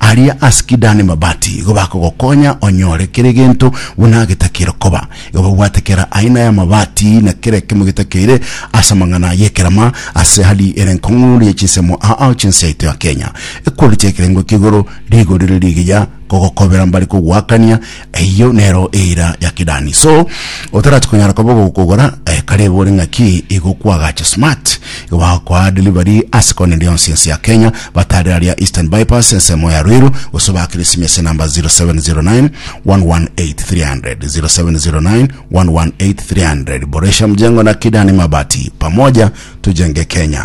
Aria ase Kidani mabati igo bakogokonya onyore kera egento buna getakeire koba. Igo babwate kera aina y'amabati na kera ekemo getakeire ase amang'ana y'ekerama ase hali ere enkong'u ye chinsemo aa chinse yaito ya Kenya. Ekweri chi'ekerengo ki'igoro rigorire rigiya kogokobera mbare kogoakania eyio nero eira ya kidani so otarati konyara koba ogokogora eh, kare igo ore ng'aki igo kwagacha smart igo bagokoa delivery ase kona eria yonsi ense ya kenya batare aria eastern bypass ensemo ya rwiru gose bakire simi ase namba 0709 118300 0709 118300 boresha mjengo na kidani mabati pamoja tujenge kenya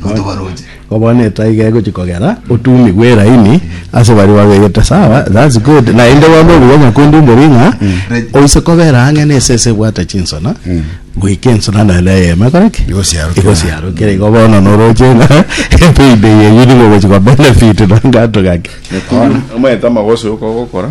notobaroche. Ko bono etaiga egochia kogera, otumigwe eraini ase baria babegete sawa, that's good, naende bono obuya nyakondindori ng'a oise kobera ang'e na esese ebwate chinsona, goika ensona naende eyemo ekore ki? Igosiarokera. Igosiarokera. Igo bono noroche ng'a epayday eyio nigo ogochia kobenefitwa na agato gake. Omonto amagoso yoka ogokora.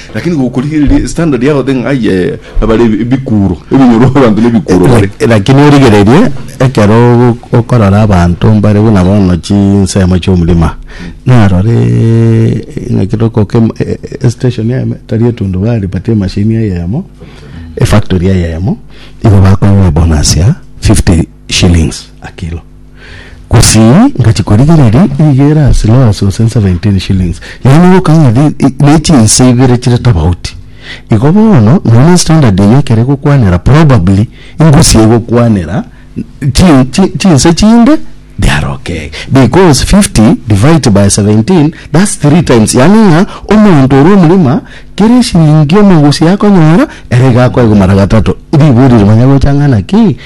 Lakini gokorigereria standard yao the ng'ai eh, nabare ebi- ebikuro ebinyoro abanto nebikuro bare Lak- lakini origererie ekero ogo- okorora abanto mbare buna bono chinsemo chiomorima narore ng'a ekero okoka em- e- e- estation eme tari etundubari but emachine eyemo efactory eyemo igo bakonywa ebonus ya 50 shillings a kilo Gose ngachia korigereria rigere ase loss gose nse 17 shillings yaani ogokama ng'a ne chinse ibere chire tofauti igo bono nonya standard eyio ekero egokwanera probably ingusie egokwanera chi chi chinse chinde biarokee because 50 divide by 17 that's three times yaani ng'a omonto ore omogima kera eshilingi omogusi akonyora ere iga akoegumara gatato ribori ri manya gocha ng'a naki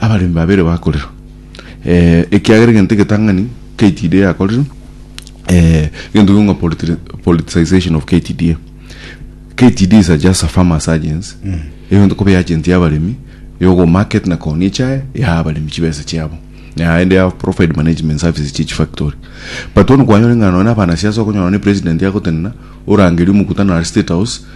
Abaremi babere bakorerwa, ekiagera egento egetang'ani KTDA yakorire, egento gokwa politicization of KTDA. KTDA is just a farmers agency, egento kobe agent ya abaremi, yogo market na kooni echae, yaha abaremi chibesa chiabo, naende ya provide management services chia chifactory. But bono kwanyora ng'a nonya na abanasiasa okonyora nonya president agotenena, orangeria omokutano are state house,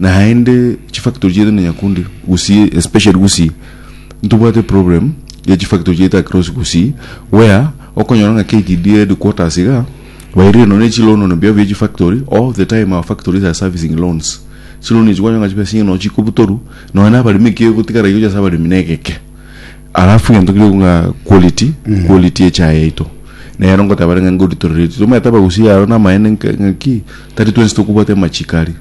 Naende chifactory chiaito na Nyakundi Gusii especially Gusii ntobwate problem ya chifactory chiaito across Gusii where okonyora ng'a KTD headquarters iga bairire nonya chiloan on behalf ya chifactory all the time our factories are servicing loans chiloan echi kwanyora ng'a chibesa chinge nonya chikobutoru nonya na abaremi ekio egotigara igocha ase abaremi negeke alafu egento keria ng'a quality quality ya echae yaito nero ngotebanere ng'a nko deteriorate tomaete abagusii aro namaene ng'a ki. Tari twensi tokobwata amachiko aria.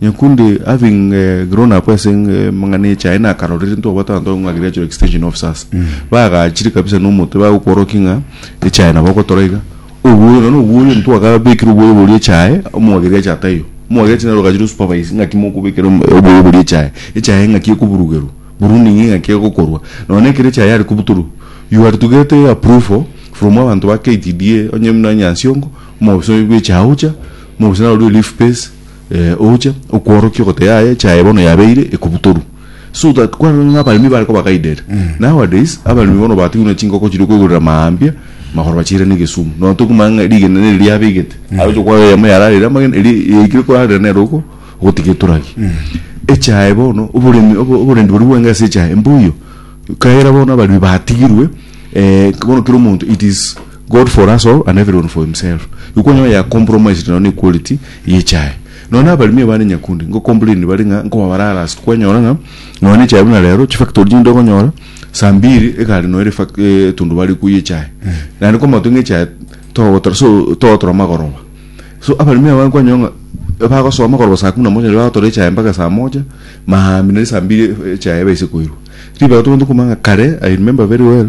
Nyakundi having grown up ase amang'ana echa aye nakarorire ntwabwate abanto abange ng'a riria achire extension officers bagachire kabisa na omote bagokworokia ng'a echaye nabo ogotora iga obwoyo nonya na obwoyo ntwakabekire obwoyo boria echaye omwageri acha taiyo omwageri acha naro ogachire osupervise ng'aki mokobekera obwoyo boria echaye echaye ng'aki ekoburugerwa pruning ng'aki egokorwa nonya na ekero echaye yare kobutorwa you are to get approval from abanto ba KTDA onye buna Nyansiongo. Mobaso oyo bw'echa aocha, mobaso naro rue leaf base eh, ocha okworokia ogote yaye echa yaye bono yabeire ekobutoru so that kwarora ng'a abaremi bare koba guided. Nowadays abaremi bono batigwe na chingoko chiria okoigorera maambia magoro bachiirane egesumu nonya tokumanya ng'a rigena neri riabegete aroche okwaga eyemo yararire amagena eria yaikire korarera nere oko ogotiga eturagi. Echa yaye bono oboremi obo- oborendi boria bweng'ee ase echa yaye mbuya, ekiagera bono abaremi batigirwe eh, bono kera omonto it is God for us all and everyone for himself, igo kwanyora yakompromised nonya ne equality ye echae. Nonya na abaremi abande nyakundi ngocomplain bare ng'a nkoba bara harassed, kwanyora ng'a nonya ne echae buna rero chifactory chinde okonyora saa mbiri egari nonya ere fac- eh, etundubari ekwo ye echae. Naende kwamanya goteba ng'a echae togotora so togotora amagoroba. So abaremi aba kwanyora ng'a bagosoa amagoroba saa kumi na moja naende bagotora echae mpaka saa moja, maambia naende saa mbiri echae ebe ase koirwa. Ribaga tobwenerete komanya ng'a kare, I remember very well,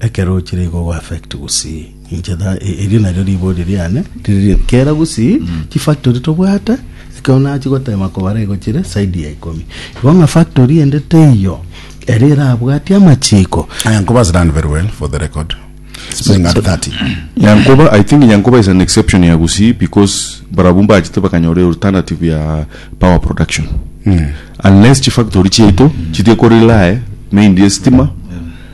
Ekero ochire igo ogo affect gusii inche da e- erio nario riborio riane riri kera gusii chifactory tobwate ekero nachi gotema kobara igo chire side ya ikomi igo ng'a factory ende teiyo ere erabwati amachiko Aya Nkuba has done very well for the record. Spring at 30. Nyankoba, I think Nyankoba is an exception ya Gusii because barabwo mbachete bakanyora a alternative ya power production. Unless chifactory chiaito chitige ko rely mainly estima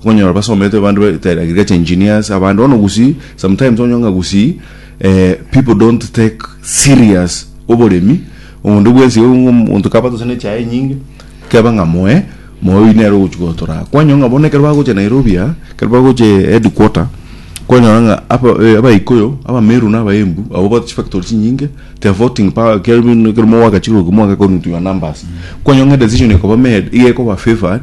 Okonyora basomete abande bete agriculture engineers abande bono gusii sometimes onyore ng'a gusii eh, people don't take serious oboremi omonto bwensi iga ng'a omonto kaba gose nechaye enyinge keba ng'a moe moe oyio nere ogochi gotora kwanyora ng'a bono ekero bagocha Nairobi aa ekero bagocha headquarter kwanyora ng'a aba eh abaikuyu abameru na abaembu abwo bate chifactory chinyinge they are voting power ekero buna ekero mogoaka chirugi mogakorwa into your numbers kwanyora ng'a edecision ekoba made iga ekoba favoured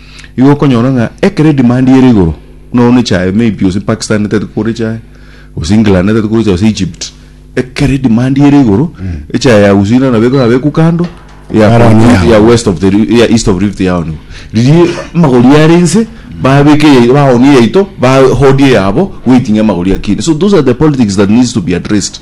Igo okonyora ng'a ekero edemand ere igoro, buna one echae maybe gose Pakistan etagete kogora echae, gose England etagete kogora echae gose Egypt, ekero edemand ere igoro, echae ya Uswiri nabo ekaba ebekwa kando, eya Yaronia Congo, eya yao. west of the Ri- eya east of Rift yaonigwa. Riria amagori are inse, babeka eyaito, baonia eyaito, ba hoard eyabo, waiting amagori akine. So those are the politics that needs to be addressed.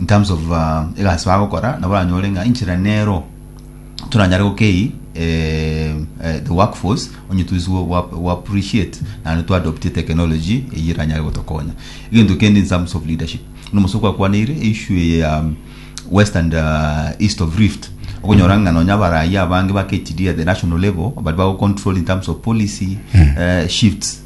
in terms of egasi bagokora nabo oranyore ng'a enchera nero toranyare gokei the work force onye twiswe go appreciate naende to adopt technology eyio eranyare gotokonya egento kende in terms of leadership buna omosubwa kwakwaneire issue eye ya west and uh, east of rift okonyora ng'a nonya abarayia abange bakechidi at the national level bari bago control in terms of policy uh, shifts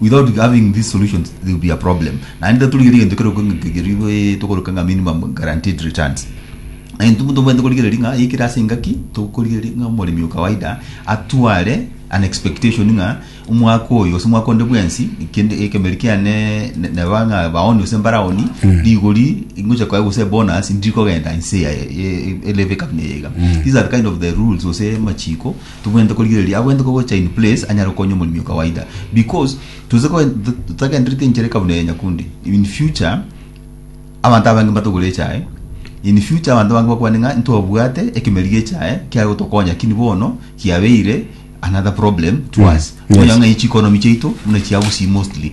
Without having these solutions there will be a problem. Naende torigerie egento keroka ng'a nkegerigwe ee tokoroka ng'a minimum guaranteed returns. Egento omonto omanyete korigereria ng'a yaikire ase engaki tokorigereria ng'a omoremi o kawaida atware an expectation ng'a omwaka oyo ase omwaka onde bwensi kende ekemeri kiane ne- neba ng'a baoni ase mbaraoni rigori ngocha koya gose bonus ndiri kogenda inse ya e- e- e- eleve kabuna eyaiga. These are kind of the rules gose amachiko tobwenerete korigereria abwenerete kogocha in place anyare gokonya omoremi o kawaida because tose koen- to- totagendereti enchera eka buna eye nyakundi in future abanto abange mbatogore echae in future abanto abange bakwane ng'a ntwabwate ekemeri gie echae kiare gotokonya kini bono kiabeire another problem to us Mm, yes. Onya ng'a echi economy chiaito buna chiagusii mostly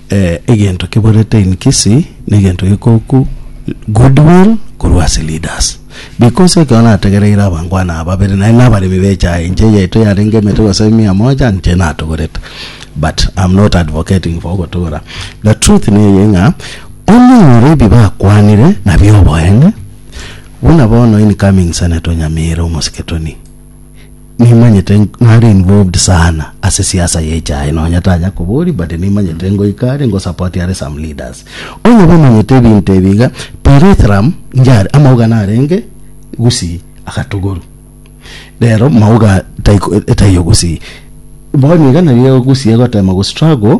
Egento kiborete in Kisii negento gikoku good will korwa ase leaders because ekero nategereire abangwana aba babere naende na abaremi bechaye inche eyaito yarenge emete gose mia moja inche natogorete but am not advocating for ogotogora the truth neye ng'a omonyore ebi bakwanire nabio oboene buna bono incoming senator o Nyamira omosike Tony Nimanyete nare involved sana ase siasa ya echae nonya tanya kobori but nimanyete ngoika are ngosapoti are some leaders onye bamanyete ebinto ebi iga perethrum njare amauga narenge gusii agatogoru rero mauga taiko etaiyo gusii bono iga nari egogusii egotema gostruggle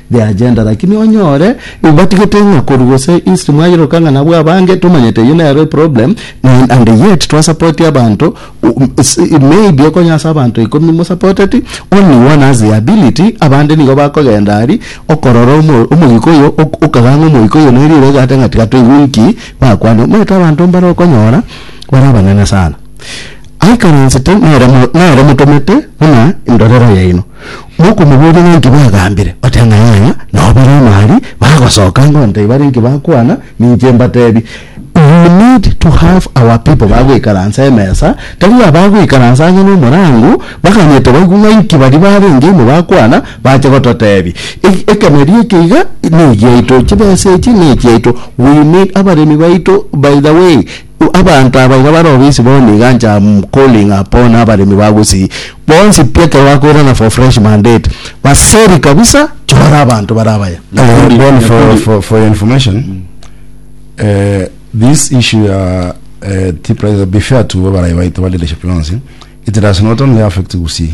The agenda lakini onyore ibatigete ng'a korwa gose history mwairoka ng'a nabwo abange tomanyete eyio nero eproblem and, and yet twasapoti abanto maybe okonye ase abanto ikomi mosapoteti only one has the ability abande nigo bakogenda ari okorora omo- omogiko oyo ok- okaganga omogiko oyo neri ere egate ng'a tiga toigwe inki bakwane omanyete abanto mbare okonyora bare abanene sana aikaransete nere mo- nere motomete buna endorero yaino. Mokomoboria ng'aki bagambire, oteba ng'a yaya nobere omari, bagosoka ango ntai bare nki bakwana, ninche mbatebi. We need to have our people bagoikaransa emesa, tari abagoikaransa ang'e nomorango, baganyete baigwe ng'a nki baria barenge ime bakwana, bache gototebi. Ekemeria eke iga negiaito, chibesa echi nechiaito, we need abaremi baito by the way. Abanto aba iga bare obisi bono nigo anche am calling upon abaremi ba Gusii bonsi pi ekero bakoirana for fresh mandate baseri kabisa chora abanto bare abaya. Nyakundi, Bono for, Nyakundi. for, for your information eh, this issue ya eh, tea prices be fair to abarayi baito ba leadership yonsi it does not only affect Gusii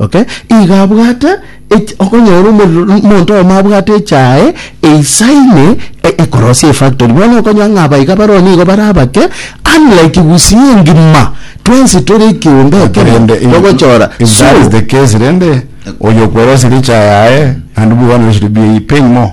Okay, iga abwate ech- okonyora omorero n- monto oyomo abwate echae eisaine e- ekorosia efactory. Bono okonyora ng'a abaiga baro nigo bare abake, unlike Gusii engima, twensi tore ekeombe But ekemo, rende if- togochora. if So, that is the case rende oyo okwerosirie echae yaye naende bweganire shiri bia pain more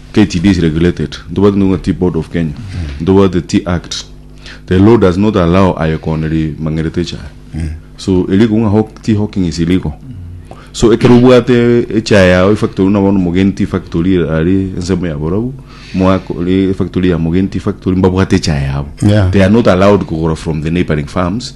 KTDA is regulated ntobwate ntoke ng'a ti board of Kenya ntobwate ti act the law does not allow aye koona rimang'erete echae so eriko ng'a hawk- ti hawking is illegal so ekero obwate echae yao efactory buna bono omogeni ti factory are ensemo ya borabu mwako ri efactory ya mogeni ti factory mbabwate echae yabo Yeah. they are not allowed kogora from the neighboring farms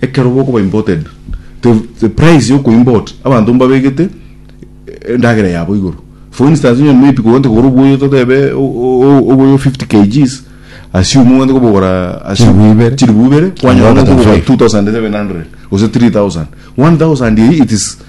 Ekero bokoba imported, the the price ya okoimport abanto mbabegete endagera yabo igoro. For instance, onye maybe kogwente kogora obuoyo totebe o- o- oboyo 50 kgs, assume ogwente kobogora assume Chiribu ibere. chiribu ibere, kwanyora Kang'ata ng'a okobogora 2500. 2700 gose 3000. 1000 eye it is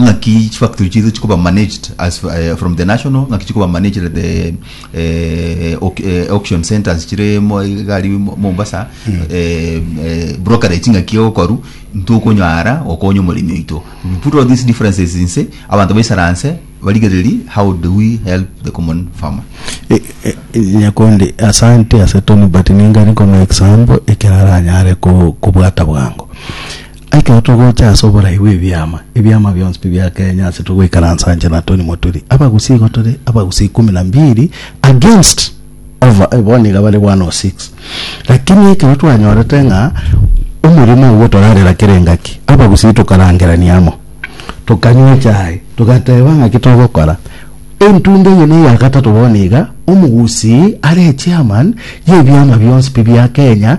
ng'aki chifactory chiaito chikoba managed as eh, from the national ng'aki chikoba managed the eh, au- eh, auction centers chire mo- igari mo- mombasa eh, eh, brokerage ng'aki egokoru ntokonyara okonya omoremi oito we put all these differences inse abanto baisaranse barigereri how do we help the common farmer E- e- e- nyakundi asante ase toni but ningari nkoma example ekero aranyare ko- kobwata bwango Ekero togocha ase oborai bw'ebiama, ebiama bionsi pi bia Kenya ase togoikaransa nche na Tony Moturi, abagusii igo tore abagusii ikumi na mbiri against over eh, bono iga bare 106. Lakini ekero twanyorete ng'a omorimo oo ogotorarera kera engaki, abagusii tokarangerania amo, tokanywa echae, togateba ng'aki togokora. Entunda eye na eya gatato bono iga, omogusii are echairman y'ebiama bionsi pi bia Kenya,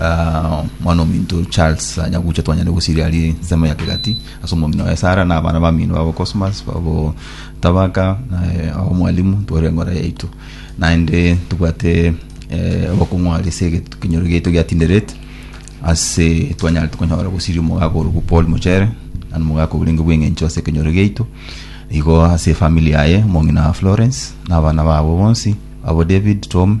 Ah, mwana ominto charles anyagucha twanyare gosiria ari nsemo ya kegati ase omong'ina waye sara na abana bamino babo cosmas babo tabaka naye ao mwalimu twore engora yaito naende tobwate eh, obokong'u are ase egetukinyoro giaito gia tinderet ase twanyare tokonyora gosiria omogaka orokwo paul mochere ani omogaka orenge bw'eng'encho ase ekenyoro giaito igo ase efamili yaye omong'ina wa florence na abana babo bonsi abo david tom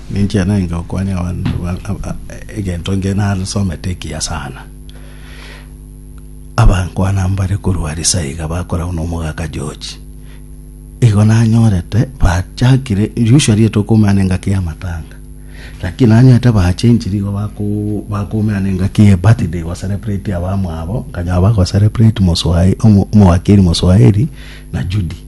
Ninche nainge gokwania egento inge nasomete ekiya sana. Abankwana mbare korwa Arisa iga bakoragwa na omogaka George. Igo nanyorete bachakire, usually tokoumana engaki ya matanga. Lakini nanyorete bachenchire igo bako bakoumana engaki ye birthday go celebrate abamwabo, nkanyora bago celebrate Moswae, Omo, Omowakiri Moswaeri na Judy.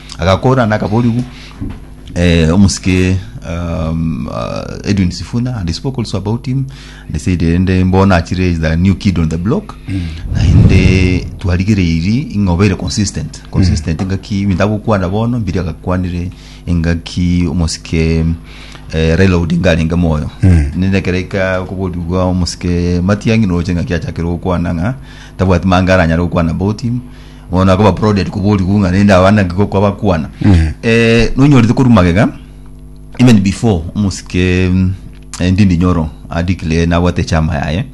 Agakora na akaborigu eh, omusike um, uh, Edwin Sifuna and he spoke also about him and he said ende mbona achire is the new kid on the block na ende twarigereiri ing'obere consistent consistent engaki bindagokwana bono mbiri agakwanire engaki omusike eh, Raila Odinga arenge moyo nende kereka koborigwa omusike Matiang'i noche ngaki achakire gokwana ng'a tabwati manga aranyare gokwana about him Bono akoba prodded koba oriku ng'a rende abana nki gokwa bakwana. Eh, nonyorete korwa magega even before omosike mm, eh, Ndindi Nyoro a declare nabwate echama yaye.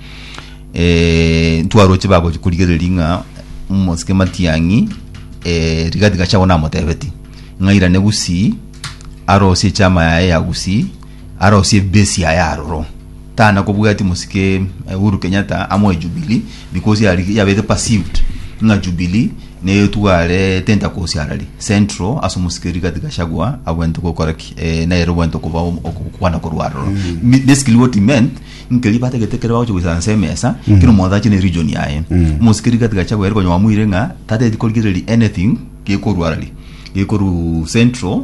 Eh, ntwaroche bagochi korigereria ng'a omosike Matiang'i eh, Rigathi Gachagua namotebetie ng'a airane Gusii arosie echama yaye ya Gusii Arosie ebesi aye aroro tana kobwati mosike Uhuru Kenyatta amoe jubilee because yari yabete perceived ng'a jubilee neyo etware tenta kosiarari central ase omosike Rigathi Gachagua abwente gokora ki eh, nere obwente okoba okwana korwa aroro Mi- basically what he meant nkeri batagete kere bagocha goisana nse emesa kero omonto ache ne region yaye omosike Rigathi Gachagua ere konyoa mwire ng'a tateti korigereria anything gekorwa arari gekorwa central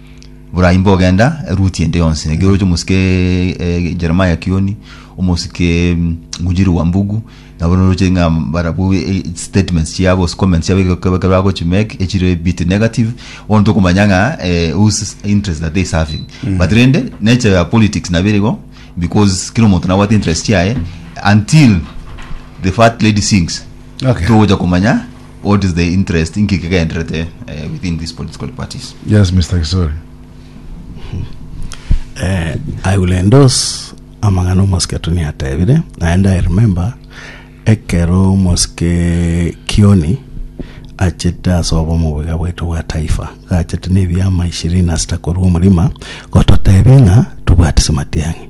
Burai mbogenda eruti ende yonsi, ekeroche omosike eh, Jeremiah Kioni, omosike mm, Ngunjiri wa Mbugu, nabo noroche ng'a barabwo eh, statements chiabo, ase comments chiabo ekero ekero bagochi make echire bit negative, bono tokomanya ng'a eh, whose interest are they serving. But rende, nature ya politics nabo erigo, because kera omonto nabwate interest chiaye until the fat lady sings Okay. togocha komanya What is the interest? Inki kegenderete eh, within these political parties? Yes, Mr. Kisori. Eh, I will endorse amang'ana omosike tuni atebire naende I remember ekero omosike Kioni achete ase obo omobuga bwaito bwa taifa gachete na ebiama ishirini na sita korwa omorima gototebia ng'a tobwate Simatiang'i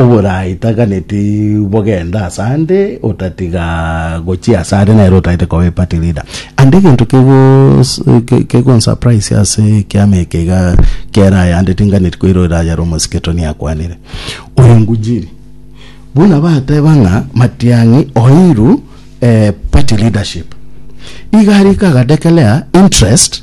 Oboraitaganeti bogenda asande otatiga gochia asare nere otaete koba eparty leader and egento kegonsurprise ase ekiama eke iga kera ayande tinganeti koira orayare omosiketo niakwanire oyo ngujiri buna bateba ng'a matiang'i oiru party leadership iga ariko aga declare interest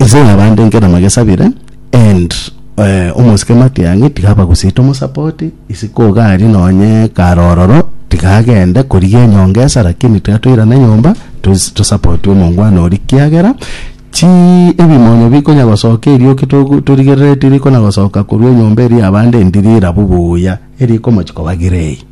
Inse nyabande inke namagesabire and eh, omosike matiang'i tiga abagusite omosapoti isi kogari nonye kare ororo tiga agende korigia enyonga esa lakini tiga toirane nyomba tos- tosapoti omongwana oria kiagera chi ebimonyo bikonya gosoka erioki togu- torigerereti rikona gosoka korwa enyomba eria yabande ndiri rabu buya erikomochi koba grey.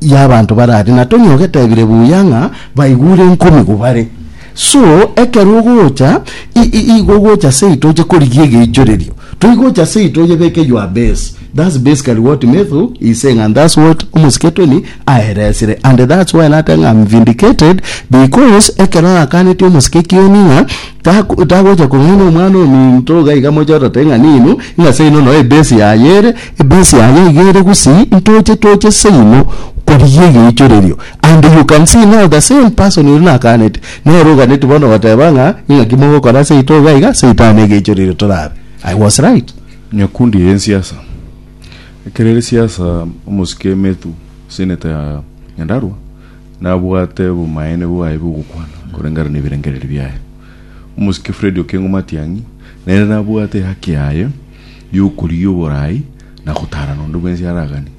y'abanto barare na Tony ogetebire buya ng'a baigure enkomi gobare. So ekero ogocha igo ogocha seito oche korigia egeichorerio toigocha seito oyebeke your base that's basically what Methu is saying and that's what omosike Tony aeresire and that's why nateba ng'a I'm vindicated because ekero arakaneti omosike Kioni ng'a tagocha kong'ina omwana ominto iga iga moche otateba ng'a ninu ng'a seino noe ebase yaye ere Base yaye iga ere gusii ntoche toche seino korigia egeichorerio and you can see now the same person oria nakaanete nere oganeti bono goteba ng'a ing'aki mogokora seito iga iga seito aane egeichorerio torabe I was right. Nyakundi eye nsiasa. Ekero ere siasa omosike Methu Senator ya Nyandarua nabwate obomaene bwaye bwogokwana koreng'ana nebirengereri biaye. Omosike Fred Okengo Matiang'i nere nabwate ehaki yaye y'okorigia oboraai na gotaarana onde bwensi araganie.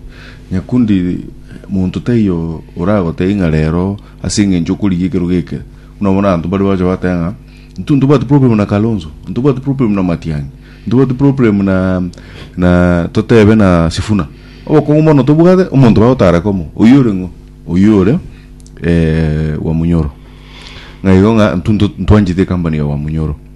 Nyakundi monto taiyo oragotebie ng'a reero ase engencho okorigia ekerogo eke, buna bono abanto baria bagocha bateba ng'a intwe ntobwati problem na Kalonzo, ntobwati problem na Matiang'i, ntobwati problem na na totebe na Sifuna. Obokong'u bono tobwate, omonto bagotaara komo, oyio ore ng'o? Oyio ore wa Munyoro. Ng'a igo ng'a intwe nto ntwanchete ecompany ya Wamunyoro.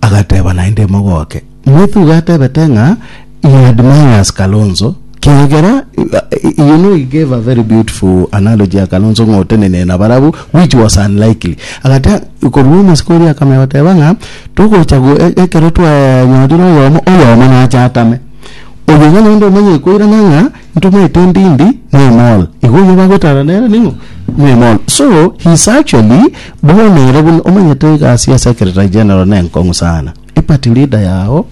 Agateba naende mogoke. Mwethuga atebete ng'a you admire us Kalonzo kiagera you know he gave a very beautiful analogy ya Kalonzo ng'a otenenene na barabu which was unlikely. Agate korwa omasiko oria akamenya goteba ng'a togocha go e- ekero twanyorire oyomo oyomo nache atame. Oyo iga naende omanye ekoirana ng'a ntomanyete ndindi mwemol igo oyio bagwetana nere ning'o mwemol so he is actually bono ere buna omanyete egasi ya secretary general nenkong'u sana eparty leader yao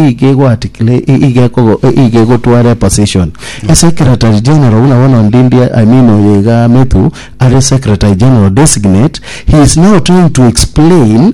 iga egoatikire iga ekogo iga egotwara eposition a secretary general buna bono ndindi i mean oyo iga methu are secretary general designate he is now trying to explain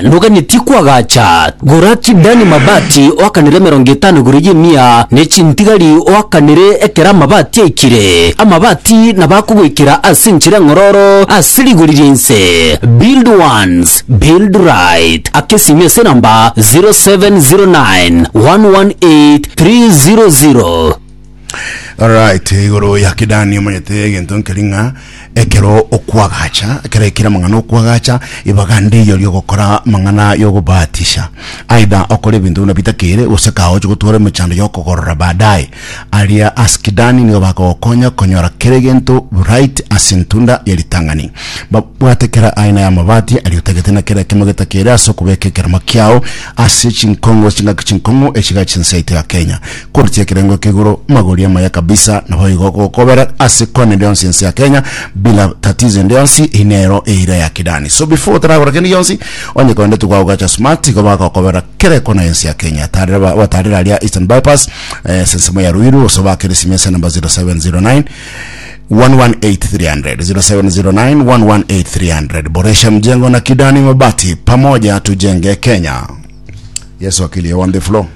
Noganetie kwagacha Goraki Dani mabati oakanere emerongo etano igoro y'emia, ne chintigari oakanere ekero amabati aikire. Amabati nabo akogoikera ase enchera eng'ororo ase rigori ri'ense. Build once, build right. Aka esimi ase enamba 0709 118 300. Alright, igoro ya kidani omanyete egento nkeri ng'a ekero okwagacha ekero ekire amang'ana okwagacha ibaga ndiyo riogokora amang'ana yogobatisha aidha okore ebinto buna bitakere gose kaoche gotwara emechando yokogorora baadaye aria ase kidani nigo bakogokonya konyora kera egento right ase entunda ya ritang'ani babwate kera aina ya amabati aria otagete na kera ekemo getakere ase okobeka ekeremo kiao ase chinkongo chingaki chinkong'u echiga chinsaito ya Kenya Korochia ekerengo eke igoro, magori amaya kabisa naboigo gokobera ase kona ende yonsi ense ya Kenya bila tatizo ende yonsi, eyi nero eira ya kidani so before otaragora kende gionsi onye kogenda togwa gogacha smart igo bagokobera kera ekona yensi ya Kenya tarera ba batarera aria Eastern Bypass eh, sensemo ya Ruiru gose obakere esimi ase number 0709 118300 0709 118300 boresha mjengo na kidani mabati pamoja tujenge Kenya Yesu akili on the floor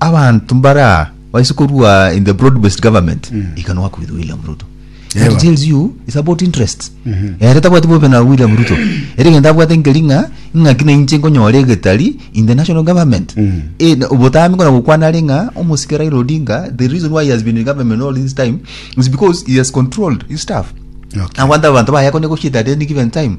Abanto mbare aa baise korua in the broad based government iga noa kwithwa William Ruto. That Ewa. tells you it's about interest. Ere tabwati bobe na William Ruto. Ere egento abwate nkeri ng'a ing'aki na inche nkonyora egetari in the national government. Eh, na- obotambe kona gokwana are ng'a omosike Raila Odinga the reason why he has been in government all this time is because he has controlled his staff. Okay. Agwanta abanto baye akonya goshida at any given time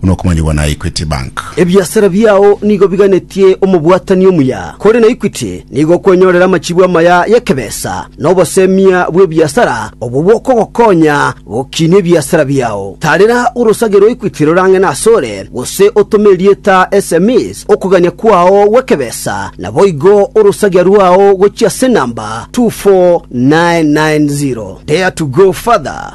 buna okomanyigwa na Equity Bank. Ebiasara biao nigo biganetie omobwatani omuya, kore na Equity nigo okwenyorera amachibu amaya y'ekebesa na obosemia bw'ebiasara obwo bokogokonya gokinia ebiasara biao. Tarera orosage rwa Equity rorang'ene asore, gose otome erieta sms okogania kwao gw'ekebesa, naboigo orosagia rwao gochia ase enamba 24990. Dare to go further.